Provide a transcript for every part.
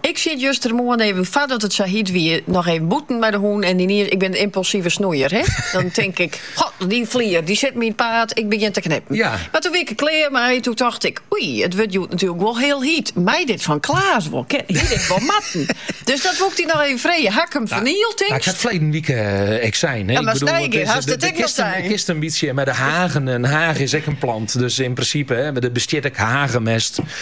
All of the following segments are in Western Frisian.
Ik siet justermoarn even, foardat it sa hiet wie, noch even bûten mei de hûn en yniens, ik bin in impulsive snoeier, hè, dan tink ik, God, dy flier, dy sit my yn it paad, ik begjin te knippen. Ja. Mar toe wie ik der klear mei, toe tocht ik, oei, it wurdt hjoed natuerlik wol hiel hiet, mei dit fan Klaas wol kin, hie dit wol moatten. Dus dat woe ik dy noch even freegje, haw ik him fernield, tinkst? Ik ha it ferleden wike ek sein, hè. Ja, mar sneige hast it ek wol sein. Der kinst in bytsje mei de hagen, in haag is ek in plant, dus yn prinsipe, hè, der bestiet ek hagemest.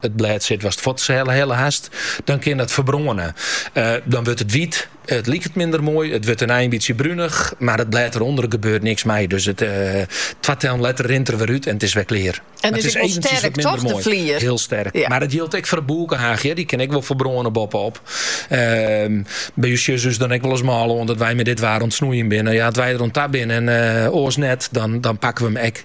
It blêd sit watst fuorthelle hast, dan kin dat ferbrâne. Dan wurdt it wyt, it liket minder moai, it wurdt in in bytsje brunich, mar it blêd derûnder gebeurt niks mei. Dus twa tellen letter rint er wer út en it is wer klear. It is eventjes wat minder moai. Hiel sterk. Mar dat jildt ek foar de bûkehaach, dy kin ek wol ferbrâne boppe-op. By ús sjogge se ús dan ek wolris mâl oan dat wy mei dit waar oan it snoeien binne. Ja, as wy der oan ta binne en oars net, dan pakke we him ek.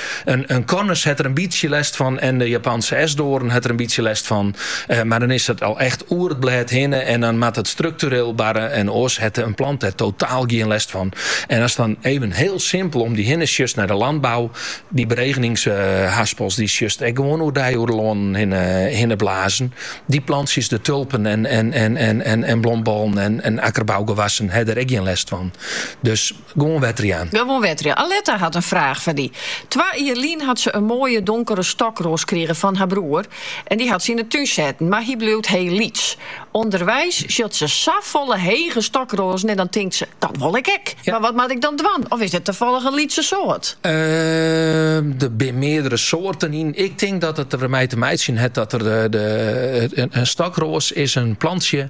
In Cornus hat der in bytsje lêst fan en de Japanske esdoarn hat der in bytsje lêst fan. Mar dan is it al echt oer it blêd hinne en dan moat it struktureel barre en oars hat in plant dêr totaal gjin lêst fan. En ast dan even hiel simpel om dy hinne sjochst nei de lanbou, dy beregeningshaspels dy sjochst ek gewoan oerdei oer de lannen hinne blazen. Dy plantsjes, de tulpen en blombollen en akkerbougewassen ha dêr ek gjin lêst fan. Dus. Gewoan wetter jaan. Gewoan wetter jaan. Aletta hat in fraach foar dy. Twa jier lyn hat se in moaie donkere stokroas krige fan har broer en dy hat se yn 'e tún setten, mar hy bliuwt hiel lyts. Underweis sjocht se safolle hege stokroazen en dan tinkt se, dat wol ik ek. Mar wat moat ik dan dwaan? Of is it tafallich in lytse soart? Der binne meardere soarten yn. Ik tink dat it dermei te meitsjen hat dat der in stokroas is in plantsje.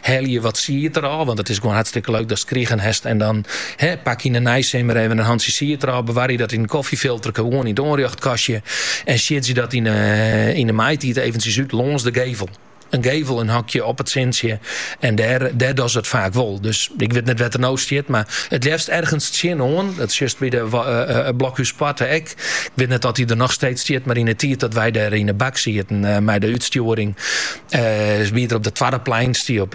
Helje wat sied er ôf, want it is gewoan hartstikke leuk datst krigen hast en dan pak yn 'e neisimmer even in hantsje sied er ôf, bewarje dat yn in kofjefilterke gewoan yn it oanrjochtkastje en siedzje dat yn 'e maitiid eventjes út lâns de gevel. In gevel in hoekje op it sintsje en dêr dogge se it faak wol. Dus ik wit net wêr't er no stiet, mar it leafst ergens tsjinoan. Dat sjochst by de Blokhúspoarte ek. Ik wit net oft hy der noch steeds stiet, mar yn 'e tiid dat wy dêr yn 'e bak sieten mei de útstjoering, wie er op de twadde plein. Stie op